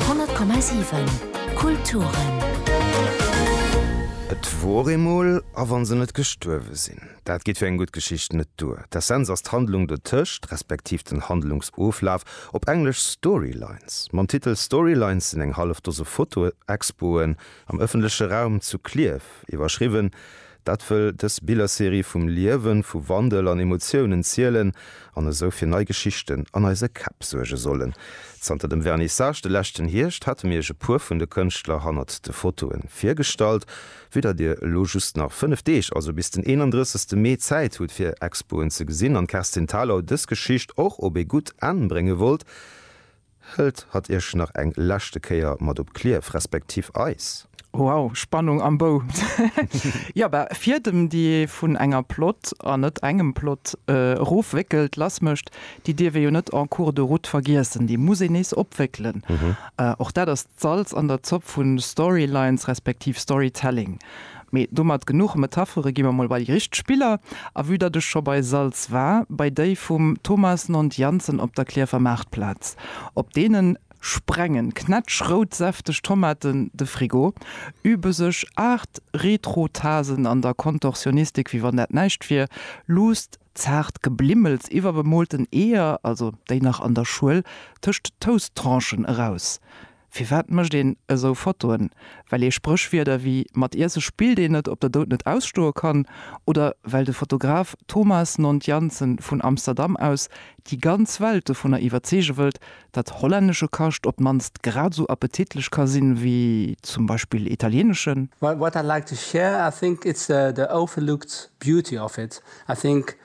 100,7 Kulturen. Et wor eemol, a wann se net gestuerwe sinn. Dat geet fir eng gutt Geschicht net duer. D'Essenz ass d'Handlung dotëscht, respektiv den Handlungsoflaf, op Englesch Storylines. Mam Titel Storylines sinn eng hallef Dose Foto-Expoen am ëffentleche Raum zu Klierf iwwerschriwwen, Dat wëll dës Billerserie vum Liewen, vu Wandel an Emotiounen zielen an esou fir nei Geschichten an eise Käpp suerge sollen. Zanter dem Vernissage de leschten Hierscht hate mir iech e puer vun de Kënschtler hannert de Fotoe virgestallt. Vue datt dir elo just nach 5 Deeg, also bis den 31 Mee, Zäit hutt fir Expoen ze gesinn an d'Kerstin Thalau dës Geschicht och op ee gutt Enn brénge wollt, Hëlt hatt iech nach eng leschte Kéier mat op Clierf, respektiv eis. Wow, Spannung am Bou! Jo, bah, fier dem déi vun enger Plot, an net engem Plot, erof wéckelt, lass mécht, déi dierf ee jo net en cours de route vergiessen, déi muss een nees opwéckelen. Och dat ass d'Salz an der Zopp vun Storylines, respektiv Storytelling. Mee domat genuch Metaphere, gi mer mol bei déi richteg Spiller. A vue datt ech scho bei Salz war, bei déi vum Thomas Nond-Janssen op der Klierfer Maartplaz. Op deenen sprengen knätschrout säfteg Tomaten de Frigo, übe sech aacht Retro-Tasen an der Kontorsionistik wéi wann dat näischt wier, luusst zaart Geblimmels iwwer bemoolten Eeër, also déi nach an der Schuel, tëscht Toast-Tranchen eraus. Firwat mécht een esou Fotoen? Well ee Spréchwierder wéi Mat Iesse spillt een net op der Doud net ausstoe kann oder well de Fotograf Thomas Nond Jansen vun Amsterdam aus déi ganz Welt dovunner iwwerzeege wëllt, datt hollännesche Kascht op d'mannst grad esou appetitlech ka sinn, wéi zum Beispill italieneschen. What I'd like to share, I think it's the overlooked beauty of it, I think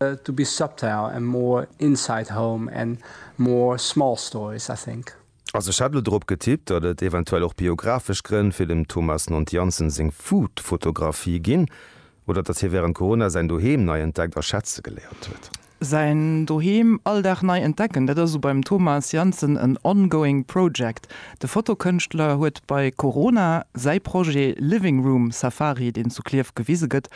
To be subtile and more inside home and more small stories, I think. Also ech hat elo drop getippt, datt et eventuell och biographesch Grënn fir dem Thomas Nont Janssen seng Food-Fotografie ginn, oder datt hie wärend Corona säin Doheem nei entdeckt a schätze geléiert huet. Säin Doheem all Dag nei entdecken, dat ass u beim Thomas Janssen en ongoing project. De Fotokënschtler huet bei Corona säi Projet Living Room Safari, deen zu Klierf gewise gëtt,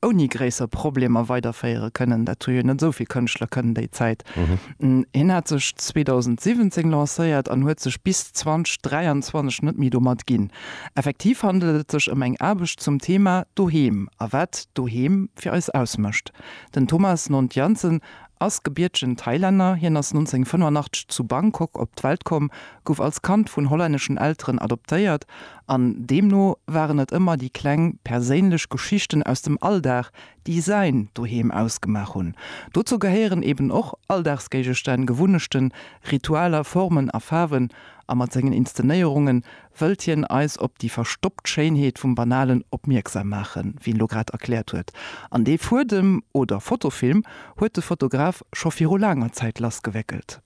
ouni gréisser Problemer weiderféiere kënnen. Dat hu jo net esou vill Kënschtler kënnen déi Zäit. Hien hat sech 2017 lancéiert an huet sech bis 2023 net méi domat ginn. Effektiv handelt et sech ëm eng Aarbecht zum Thema Doheem a wat Doheem fir eis ausmécht. Den Thomas Nontiansen ass gebiertegen Thailänner. Hien ass 1985 zu Bangkok op d'Welt komm, gouf als Kand vun hollänneschen Elteren adoptéiert An deemno waren et ëmmer déi kleng perséinlech Geschichten aus dem Alldag, déi säin Doheem ausgemaach hunn. Dozou gehéieren eben och Alldagsgéigestänn, Gewunnechten, Ritualer, Formen a Faarwen. A mat sengen Inszenéierunge wëllt hien eis op déi verstoppt Schéinheet vum Banalen opmierksam maachen, wéi en lo grad erkläert huet. An dee Fuedem oder Fotofilm huet de Fotograf scho viru laanger Zäit lassgewéckelt.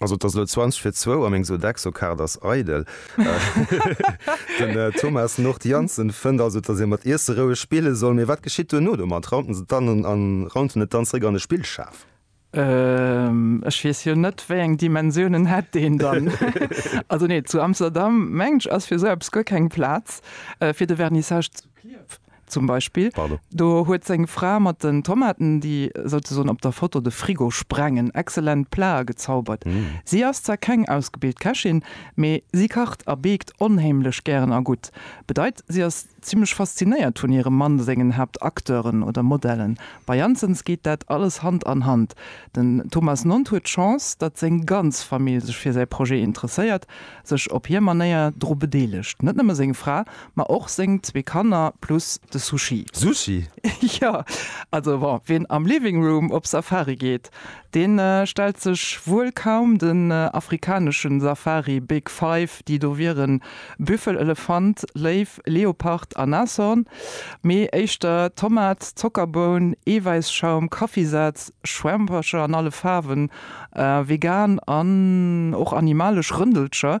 Also et ass elo 20 fir zwou a meng Sodexo-Kaart ass eidel. Den Thomas Nord Janssen fënnt also, datt ee mat Iesse roueg spille soll. Mee wat geschitt duerno domat? Raumt en se dann a raunt en et dann zeréck an de Spillschaf? Ech weess jo net, wéi eng Dimensiounen hätt deen dann. Also nee, zu Amsterdam, mengen ech, ass fir esou eppes guer keng Plaz, fir de Vernissage. Klierf zum Beispill, do huet seng Fra mat den Tomaten, déi souzesoen op der Foto de Frigo sprengen, excellent Plaë gezaubert. Si ass zwar keng ausgebilt Kächin, mee si kacht a beekt onheemlech gären a gutt. Bedeit, si ass zimmlech faszinéiert vun hirem Mann sengen Haaptacteuren oder Modellen. Bei Janssens geet dat alles Hand an Hand. Den Thomas Nonth huet d'Chance, datt seng ganz Famill sech fir säi Projet interesséiert, sech op hir Manéier dru bedeelegt. Net nëmme seng Fra, Ma och seng zwee Kanner plus de Sushi. Sushi? Jo, also bon, wien am Living Room op Safari geet, dee stellt sech wuel kaum den afrikaneschen Safari Big Five, déi do wieren, Büffel, Elefant, Léiw, Leopard a Nashorn, mee éischter Tomat, Zockerboun, Eewäisschaum, Kaffisaz, Schwämpercher an alle Faarwen, vegan an och animalesch Rëndelcher.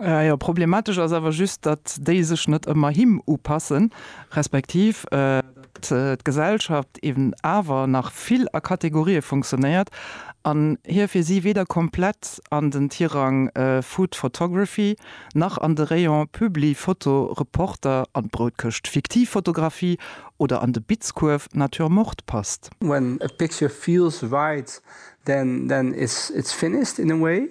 Jo, problematesch ass awer just, datt déi sech net ëmmer him upassen, respektiv datt d'Gesellschaft eben awer nach vill a Kategorië funktionéiert an hie fir si weder komplett an den Tirang Food Photography nach an de Rayon Publi Foto Reporter, an d'Broutkëscht Fiktiv Fotografie oder an de Bitzkuerf Nature Morte passt. When a picture feels right, then it's finished in a way.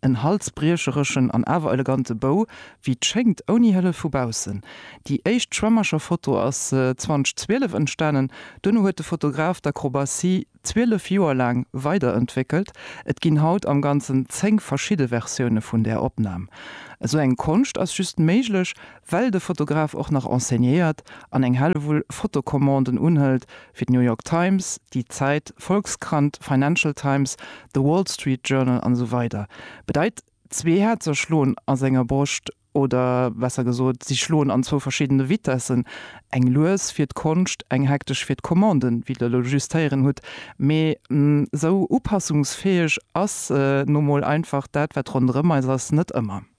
En halsbriechereschen an awer elegante Bou, wéi 't schéngt, ouni Hëllef vu baussen. Déi éischt Schwämmercher-Foto ass 2012 entstanen. Duerno huet de Fotograf d'Akrobatie 12 Joer laang weiderentwéckelt. Et ginn haut am Ganzen 10 verschidde Versioune vun där Opnam. Esou eng Konscht ass just méiglech, well de Fotograf och nach enseignéiert an eng Hellewull Fotocommanden unhëlt, Fir d'New York Times, Die Zeit, Volkskrant, Financial Times, The Wall Street Journal an esou weider bedeit zwee Häerzer schloen a senger Broscht, oder besser gesot, si schloen an zwou verschiddene Vitessen, eng lues fir d'Konscht, eng hektesch fir d'Commanden, wéi Der elo just héieren hutt. Mee esou upassungsfäeg ass nu mol einfach dat, wat ronderëm eis ass, net ëmmer.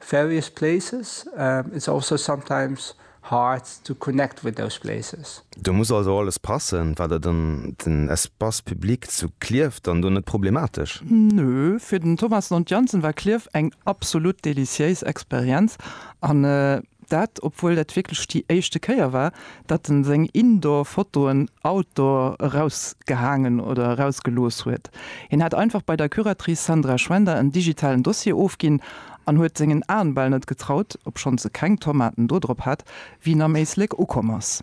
Various places, it's also sometimes hard to connect with those places. Do muss also alles passen, wat et ëm den Espace public zu Klierf dann do net problematesch? Nö, fir den Thomas Lont-Jansen war Klierf eng absolut deliciéis Experienz an Dat obwuel dat wierklech déi éischte Kéier war, datt en seng Indoor-Fotoen Outdoor erausgehaangen oder erausgelooss huet. Hien hat einfach bei der Curatrice Sandra Schwender en digitalen Dossier ofginn an huet sengen Aen bal net getraut, obschonns e keng Tomaten do drop hat, wéi en am Éislek ukomm ass.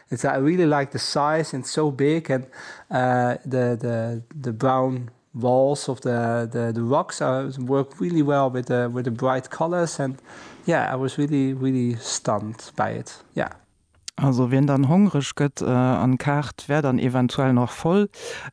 It's I really like the size and so big and the the the brown walls of the the the rocks are work really well with the with the bright colors and yeah I was really really stunned by it yeah. Also wien dann hongreg gëtt an d'Kaart wär dann eventuell nach voll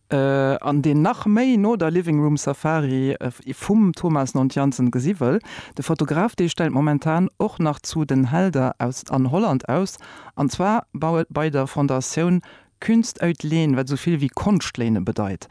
an deen nach méi no der Living Room Safari vum Thomas Nontianzen gesi wëll, de Fotograf dee stellt momentan och nach zu den Helder aus an Holland aus An zwar bei der Fondatioun Kunst uit Leen, wat esou vill wéi Konscht léine bedeit.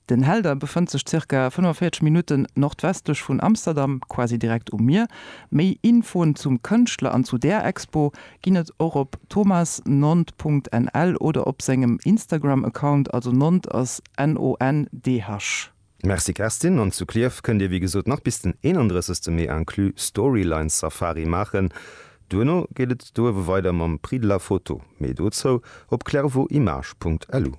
Den Helder befënnt sech ca. 45 Minutten nordwestlech vun Amsterdam, quasi direkt um Mier. Méi Infoen zum Kënschtler an zu där Expo ginn et och op thomasnond.nl oder op sengem Instagram-Account, also Nond ass N-O-N-D-H. Merci Kerstin, an zu Klierf kënnt Dir wéi gesot nach bis den 31 Mee inclus Storyline Safari maachen. Duerno geet et do ewwe weider mam Prix de la Photo. Méi dozou op clairvotimage.lu.